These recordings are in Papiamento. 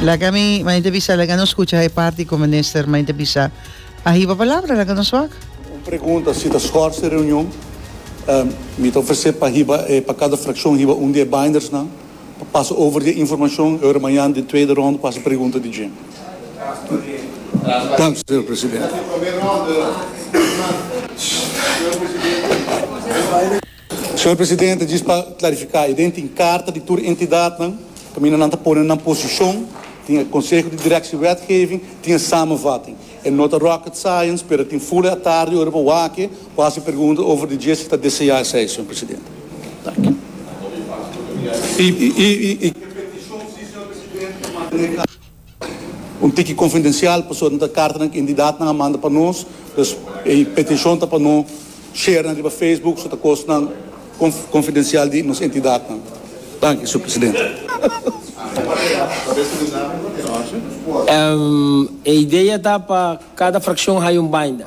Laga mi maite bisa, laga no scucha e parti cu minister maite bisa. A hiba palabra, laga nos wak. Un pregunta, si ta schorse e reunion, mi ta ofrece pa hiba e, pa cada fraccion hiba un di e bindersnan pa pasa over di e informacion e ora mañan den tweede ronde pa haci pregunta di dje. Dank, señor presidente. Señor Presidente, djis pa clarifica, y den tin carta di tur entidadnan, caminda nan ta pone nan posicion, tin e Conseho di Directie Wetgeving, tin e Samenvatting. E no ta rocket science, pero tin fula atardi ora bo wake, bo haci pregunta over di dje si ta desea esey, Señor Presidente. Danki. Un tiki konfidensial pasobra nan ta kartanan ku entidatnan a manda pa nos, dus e petishon ta pa no share nan riba Facebook, so ta kosnan konfidensial di nos entidatnan. Danki, Sur Presidente. E idea ta pa kada frakshon haya un binder.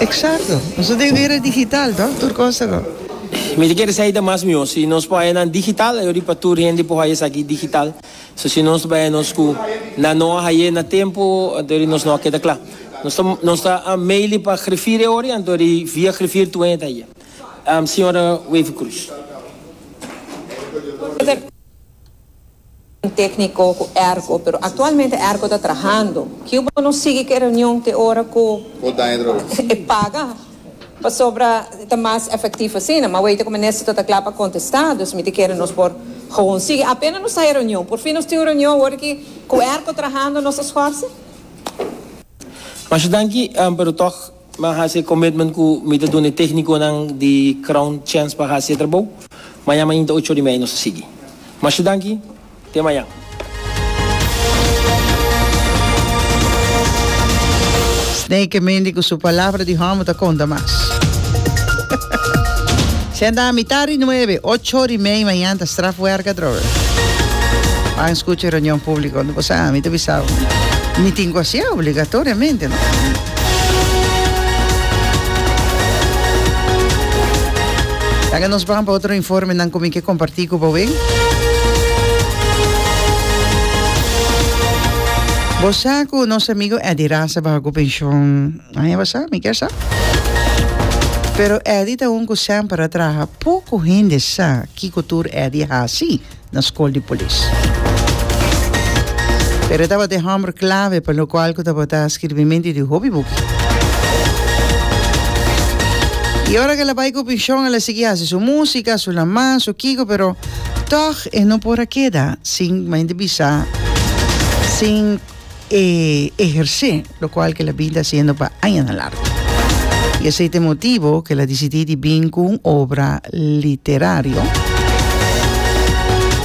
Exacto. Nos ta den un era digital toh, tur cos ta go. Mi ta kere sa y ta mas mihor. Si nos por haya nan digital, yo riba tur hende por haya esaki digital. So si nos bai nos cu nan no a haye na tempo, antori nos no a keda cla. Nos ta, nos ta maili pa grifir e ori, antori via grifir tur hende ta haye. Señora Wevercruz. Tékniko ku Erko, pero aktualmente Erko ta trahando. Kiu bo no sigui ku e reunion te ora ku e paga, pasobra ta mas efektif asina. Mawei ta ku minister ta ta kla pa kontestá, dus mi ta kere nos por gewoon sigui. Apena nos ta e reunion, por fin nos tin un reunion awor aki ku Erko trahando nos ta skorse. Masha danki, pero tòg. Mi a hasi e commitment cu mi ta duna e tecniconan di Crown chance pa hasi e trabou. Maña mainta ocho ora y media nos a sigui. Masha danki. Te mañan. Snake Mendy cu su palabra di homber ta conta mas. Senta mitad di nuebe, ocho ora y media mañan ta strafwerk atrobe. Pan scucha e reunion publico. Bo sa, mi ta bisa bo. Mi tin cu hacié obligatoriamente, no? Laga nos bran pa otro informenan cu mi ke comparti cu boe. Bo sa cu nos amigo Eddy Rasa baha cu pension? Anja bo sa? Mi ker sa. Pero Eddy ta un cu semper a traha. Poco hende sa kico tur Eddy a haci. na Skol di Polis. Pero e tabata e hòmber klave pa lokual ku tabata skirbimenti di hopi buki. I ora ku el a bai ku penshon el a sigui hasi su músika, su lamá, su kiko, pero tòg e no por a keda sin mainta bisa, sin. e ehersé, lokual ke el a bin ta hasiendo pa añanan largu. I esei ta e motibu ku el a disidí di bin ku un obra literario.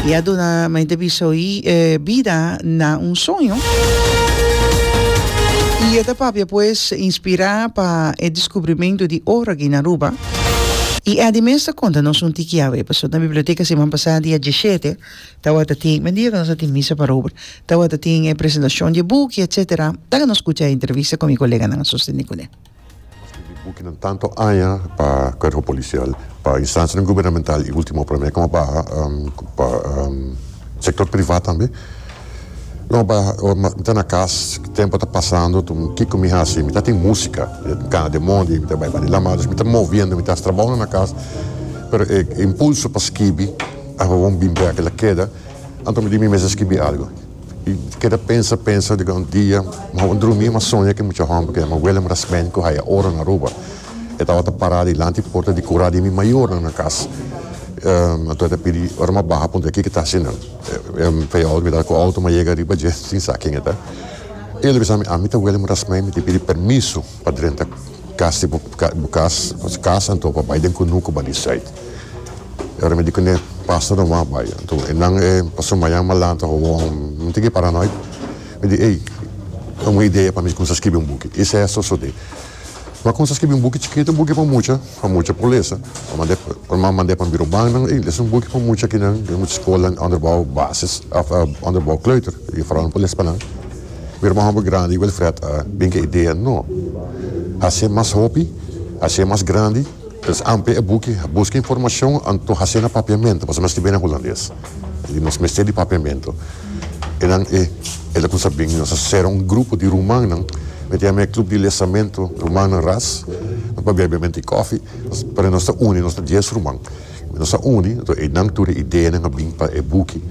I a duna mente bisa oí bida na un soño. I e ta papia pues inspirá pa e deskubrimentu di oro aki na Aruba. I Eddie mes ta konta nos un tiki awe, pasobra na biblioteka siman pasá dia dishete. Tawata tin men dia ku nos a tin misa parober, tawata tin e presentashon di e buki, etsetera. Laga nos skucha e entrevista ku mi koleganan, a sostene kune. Nos a skirbi bukinan tantu aña pa Kuerpo Polisial, pa instansianan gubernamental i ultimo pa Lamerika Mau Baha, pa sektor privat tambe. Lo ba ora mi ta na kas, tempu ta pasando, tu kiko mi hasi? Mi ta tin musika, kana den mondi, mi ta bai bani lama, dus mi ta moviendo, mi ta hasi trabounan na kas, pero e impulso pa skibi. Aharon bin bira kila keda, anto mi di mi mes a skibi algu. I keda pensa, pensa, di un dia mi tabata drumi, mi a soña ku e mucha hòmber ku yama Willem Rasmijn ku haya oro na Aruba. E tabata pará dilanti e porta di kura di mi mayornan na kas. Anto e ta pidi, ora mi a baha a puntra, kiko e ta hasi nan? E feyout mi ta ku outo mi a yega riba dje sin sa ken e ta. E lo bisa mi, ami ta Willem Rasmijn, mi tin pidi permiso. pa drenta kas di bo kas nos kas anto pa bai den kunu ku bali sait e ora mi di kuné pastor nan wou bai anto e nan e pastor mayan malan ta hoon mi tiki para noit mi di ey ta un idea pa mi kumsa skibi un buki i sesa sosodé mi a kumsa skibi un buki chikito un buki pa mucha pa mucha por lesa mi mand'é ora mi a mand'é pa biro ban nan ey lesa un buki pa mucha kinan den mucha skola onderbou basis òf onderbou kleuter i fora nan por les pa nan. Mi hermano bo grandi Wilfred a bin cu e idea no. Hace mas hopi, hace mas grandi. Pues ampe e buki, busca informacion anto hace na papiamento pasobra nos tin bena Hulandes y nos mester di papiamento. E nan e el a cuminsa a bin, nos a cera un grupo di rumannan, mi ta yama e club di lesamento rumannan ras, nos pa bebe mente cofi, pero nos ta uni, nos ta dies ruman. Nos a uni, enton einan tur e ideanan a bin pa e buki.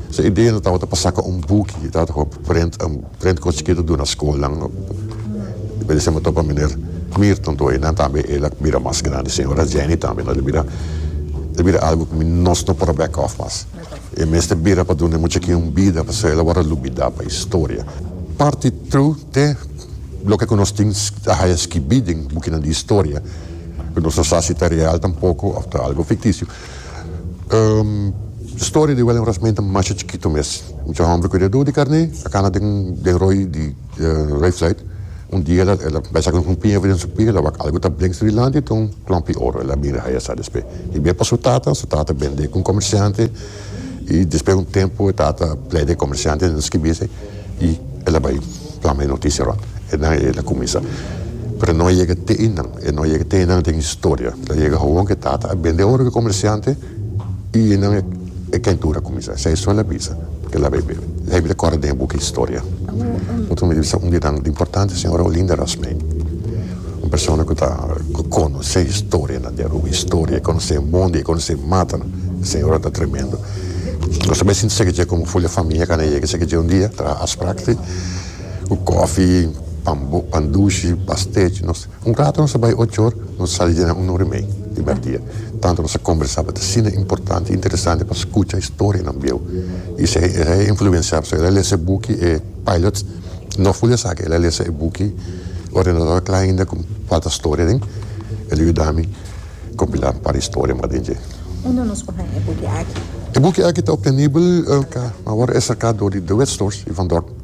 Esei ideanan tabata pa saka un buki i tabata pa prent, un prent kos chikitu duna skolnan. Mi a disema tot pa Miner Mirton tur einan tambe el a bira mas grandi. Señora Jenny tambe. Enton el a bira, el a bira algu ku mi, nos no por a back off mas. E mester bira pa duna e muchakinan un bida pasobra el a wòrdu lubidá pa historia. Parti tru te loke ku nos tin a haya skibí den bukinan di historia, ku nos no sa si ta real tampoko òf ta algu fiktisio. Storia di Willem Rasmijn ta masha chikitu mes. Mucha hòmber ku dia duo di karné a kana den roi di. Ray Flight, un dia el a bai saka un rumpi heve den su pie, el a wak algu ta brengs di dilanti, ta un klompi oro, el a mira haya sa despe i bier pa su tata, su tata bende ku un komersiante i despe un tempu e tata plede e komersiante den skibisi i el a bai plama e notisia rònt enan i el a kuminsa pero e no a yega te einan, e no a yega te einan den historia, lo a yega awor ku e tata a bende oro ku e komersiante. I nan e kentura kuminsá. Sa e sol a bisa ke la bebe. La Biblia kòrda den e buki Historia. Bo ta rumber di bisa un di nan importante señora Olinda Rasmijn. Un persona ku ta ku konosé historianan di Aruba. Historia. E konosé e mondi, e konosé e matanan. E señora ta tremendo. Nos ta bai sinti sèki dje komo Fulya Famia kanda e yega sèki dje un dia, traha afspraak, si, ku kòfi, pan bo, pan dushi, pastèchi. Nos. Un rato nos a bai ochor, nos a sali dje un no remei di mèrdia. Tantu nos a kombersá pa ta asina importante i interesante pa skucha historia nan bieu. I si e a influensiá pasobra el a lesa e buki e Pilots, no ful di esaki, el a lesa e buki Ordenador Klein inda ku falta storia den, el a yuda mi kompilá un par historia mas den dje. Unda nos por haña e buki aki? E buki aki ta optenibel na Esaka, ma awor ta esaka dor di The Wet Stores i Van Dorp.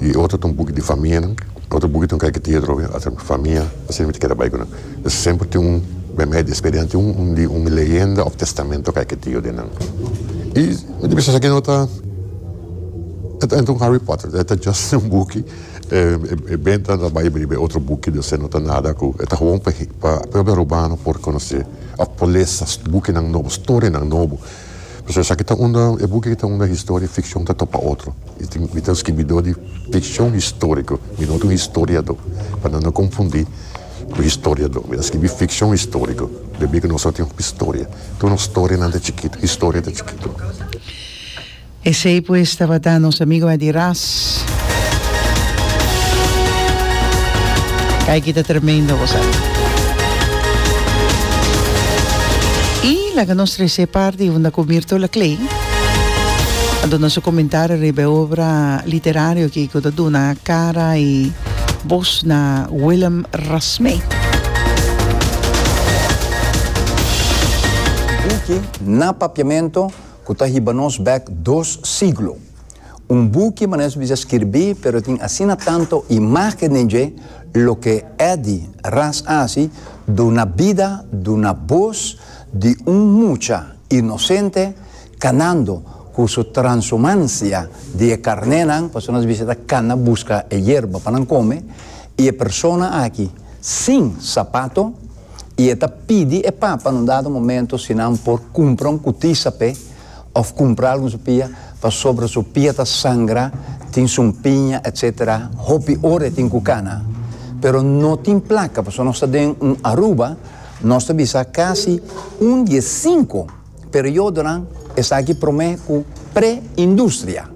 y otro ta un buki di famia nan otro buki ta un kaikitia otro bes ata famia asina mi ta keda bai ku nan entonces semper tin un mehdi di experiencia tin un di un leyenda of testamento kaikitio di nan y mi ta bisa esaki no ta e ta un Harry Potter e ta just un buki e benta ta bai riba e otro buki di osea no ta nada ku e ta gewoon pa propio robano por conoce of por lesa bukinan nobo storianan nobo. Pasobra esaki ta unda, e buki aki ta unda historia y ficcion ta topa otro. Y tin, mi ta un scribidor di ficcion historico, mi no ta un historiador, pa nan no confundi cu historiador. Mi ta scribi ficcion historico, pasobra nos a tin hopi storia. Tur nos storianan ta chikito, historia ta chikito. Esey pues tabata nos amigoe di ras. Kay ki ta tremendo bo sa. Y laga nos trece parti unda cu Mirto Laclay a duna su comentario riba e obra literario aki cu ta duna cara y voz na Willem Rasmé. Buki na papiamento. Cu ta hiba nos bek dos siglo. Un buki manes bisa skirbi pero tin asina tanto imagen den dje, loke Eddy Ras aci duna bida duna bos di un mucha inocente canando cu su transhumancia di e carnenan, pasobra nos bisa ta cana busca e yerba pa nan come, y e persona aki sin sapato, i e ta pidi e papa na un dado momento si nan por kumpra un kutisa p'e òf kumpra algu na su pia pasobra su pia ta sangra, tin sumpiña etc. Hopi ora e tin ku kana. Pero no tin plaka pasobra nos ta den un Aruba, nos ta bisa kasi un di e sinku periodonan esaki promé ku pre-industria.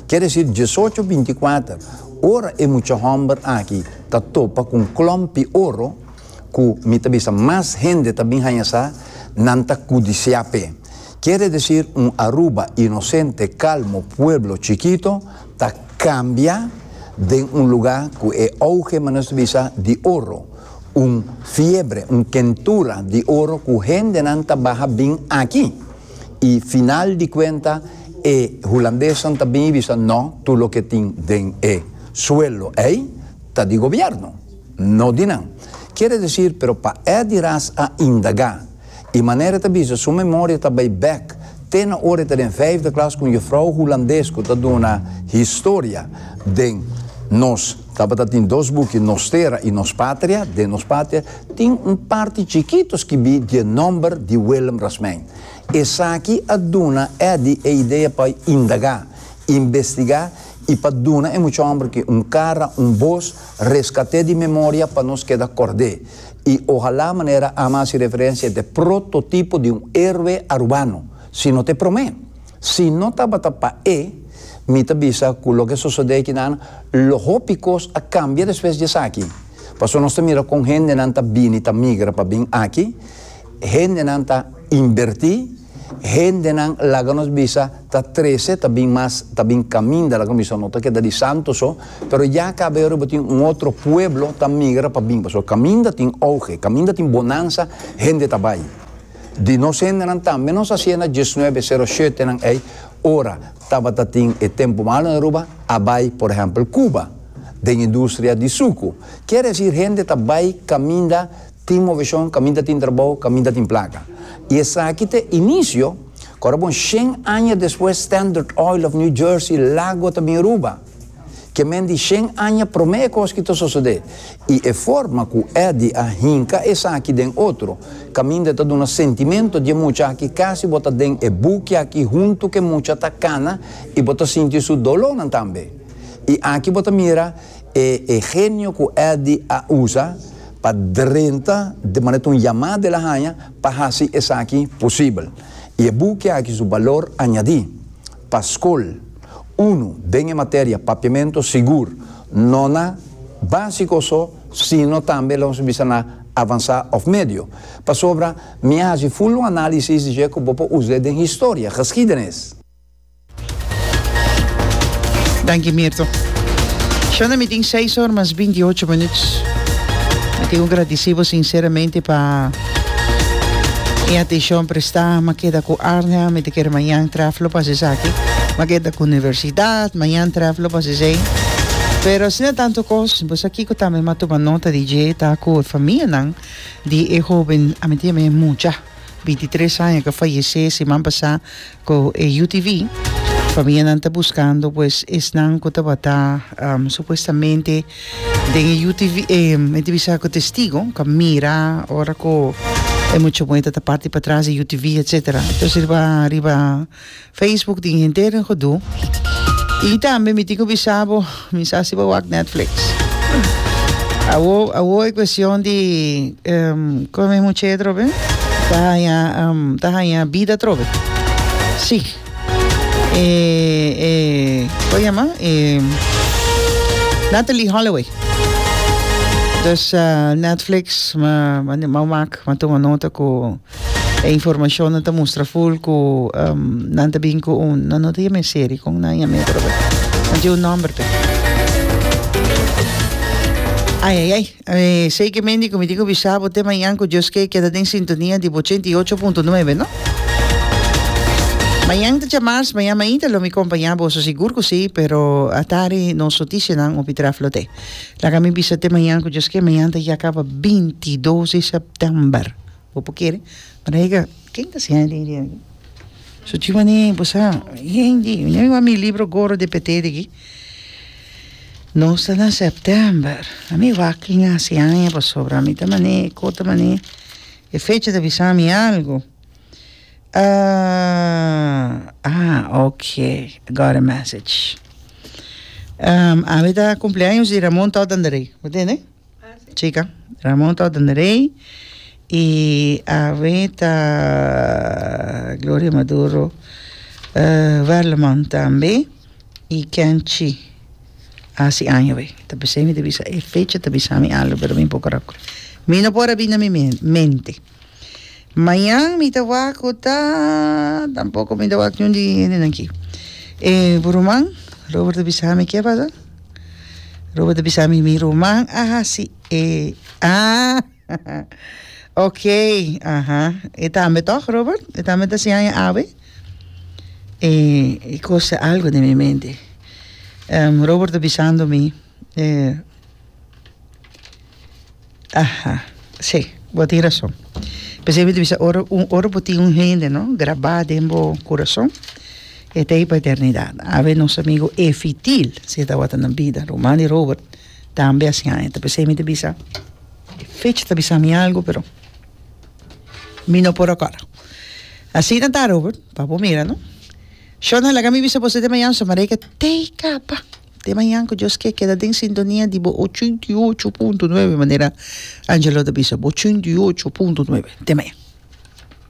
Kier desi diesocho binti kuater ora e mucha hòmber aki ta topa ku un klòmpi oro, ku mi ta bisa mas hende ta bin haña sa, nan ta kudisiá p'e. Kere desir un Aruba inosente, kalmo pueblo chikito ta kambia den un lugá ku e ouge manos ta bisa di oro, un fiebre, un kentura di oro ku hendenan ta baha bin aki. I final di kuenta e hulandesnan ta bin i bisa, No, tur loke tin den e suelo ei ta di gobièrnu. No di nan. Quiere decir, pero pa e di ras a indaga. Y manera e ta bisa, su memoria ta bay bek te na ora e ta den vijfde klas cu un juffrouw Hulandes cu ta duna historia den nos, tabata tin dos buki Nos Tera y Nos Patria, den Nos Patria tin un parti chikito skibi die nomber di Willem Rasmijn. Esaki a duna e di e idea pa indaga, investiga y pa duna e muchomberki un cara, un voz, Rescat'é di memoria pa nos keda kord'é, i ohalá manera ama hasi referencia e te prototipo di un héroe arubano, sino te promé. Si no tabata pa e, mi ta bisa ku loke a sosodé aki nan, lo hopi kos a kambia despues di esaki. Pasobra nos ta mira kon hendenan ta bini, ta migra pa bin aki. Hendenan ta inbertí, hendenan laga nos bisa ta trese, ta bin mas, ta bin kaminda, laga nos bisa no ta keda di santo so, pero ya kaberu bo tin un otro pueblo ta migra pa bin pasobra kaminda tin ouge, kaminda tin bonansa, hende ta bai. Di nos hendenan tambe nos a siena diesnuebe sero shuetenan ei ora tabata tin e tempu malu na Aruba a bai por ehèmpel Cuba den industria di suku. Kier esir hende ta bai kaminda. Tin moveshon kaminda tin trabou, kaminda tin plaka. I esaki ta e inisio ku ora bon shen aña despues Standard Oil of New Jersey lago ta bin ruba. Kemen di shen aña promé e kos ki ta sosodé. I e forma ku Eddie a hinka esaki den otro kaminda ta duna sentimento di e mucha aki kasi bo ta den e buki aki huntu ku e mucha ta kana i bo ta sinti su dolonan tambe. I aki bo ta mira e e genio ku Eddie a usa pa drenta di manera ta un yamada el a haña pa hasi esaki posibel. I e buki aki su balor añadí pa skol, unu, den e materia Papiamentu Sigur, no na básiko so sino tambe lo nos bisa na avansá òf medio. Pasobra mi a hasi full un análisis di dje ku bo por usa den historia, geskiedenis. Danki Mirto. Shona mi tin seis or mas binti ocho minuut. Mi tin ku gradisí bo sinseramente pa e atenshon prestá. Mi keda ku Arnel, mi ta kere mañan trèf lo pa hasi esaki. Mi a keda ku universidat, mañan trèf lo pa hasi esei. Pero asina tantu kos, bo sa kiko tambe mi a tuma nota di dje? Ta ku e famianan di e hoben, a mi tin e mucha, binti tres aña, ku a fayesé siman pasá. Cu e UTV famianan ta buscando pues esnan cu tabata um, supuestamente den e UTV, eh, mi te bisa cu testigo, cu a mira ora cu e mucho muerta ta parti pa tras e UTV, etcetera. Entonces riba, riba Facebook tin henter en Godoo. Y tambe mi tin cu bisabo, Mi sa si bo wak Netflix. Awo awo e cuestion di um, como mesmo che trobe? Ta haña um, ta haña vida trobe. Sí. Eh, eh, ¿cómo llama? Eh, Natalie Holloway. Dus uh, Netflix, ma, ma, ma, ma, ma toma nota ku E informacionnan ta mustra full cu um, nan ta bin cu un, nan no ta yam'e serie, con nan yam'e brother? Nan tin un nomber pe. Ay, ay, ay. Eh, sei que mendi cu mi tin cu bisa bo te mañan cu Dios que keda den sintonia di bo 88.9, no? Mañan ta chamars, mañan mainta lo mi compaña bo, so sigur cu si, pero atari nos noticianan opi traf lo te. Laga mi bisa te mañan cu Dios que mañan ta ya caba 22 de september. Bo por kere rega ken ta siña lei di aki. So chi mane bo sa hende ña mi wak mi libro goro di petedi aki nos ta na september a mi wak ken a hasi aña pasobra mi ta mane ko ta mane e fecha ta bisa mi algu ok got a message awe ta cumpleaños di Ramon Totandrey bo tende. Chika, Ramon ta orden rey y awe ta Gloria Maduro, eh, Werleman tambe y Kenchi haci aña awe. Ta p'esei mi ta bisa e fecha ta bisami algo pero mi poco raco. Mi no por a bini na mi mente. Mañan mi ta wak cu ta. Tampoco mi ta wak niun di hendenan aquí. Eh, bu ruman, Robert a bisa mi, kia pasa? Robert a bisa mi, mi ruman a hasi e. Ah, ok, aha. E tambe toch, Robert? E tambe ta siña e awe? Eh, e cosa algo den mi mente. Robert a bisando mi, eh. Aha si bo a tin rason p'esei mi ta bisa ora ora bo tin un hende no grabá den bo kurason e ta ahi pa eternidat awe nos amigo efitil si e tabata na bida Romani Robert tambe a siña ta p'esei mi ta bisa e fecha ta bisa mi algu pero mi no por recorda asina ta Robert pa bo mira no Shona laga mi bisa bo sete mañana so mareika tey kapa. Te mañan ku Dios ke, keda den sintonia di bo ochenta i ocho punto nuebe, manera Angelo ta bisa, ochenta i ocho punto nuebe. Te mañan.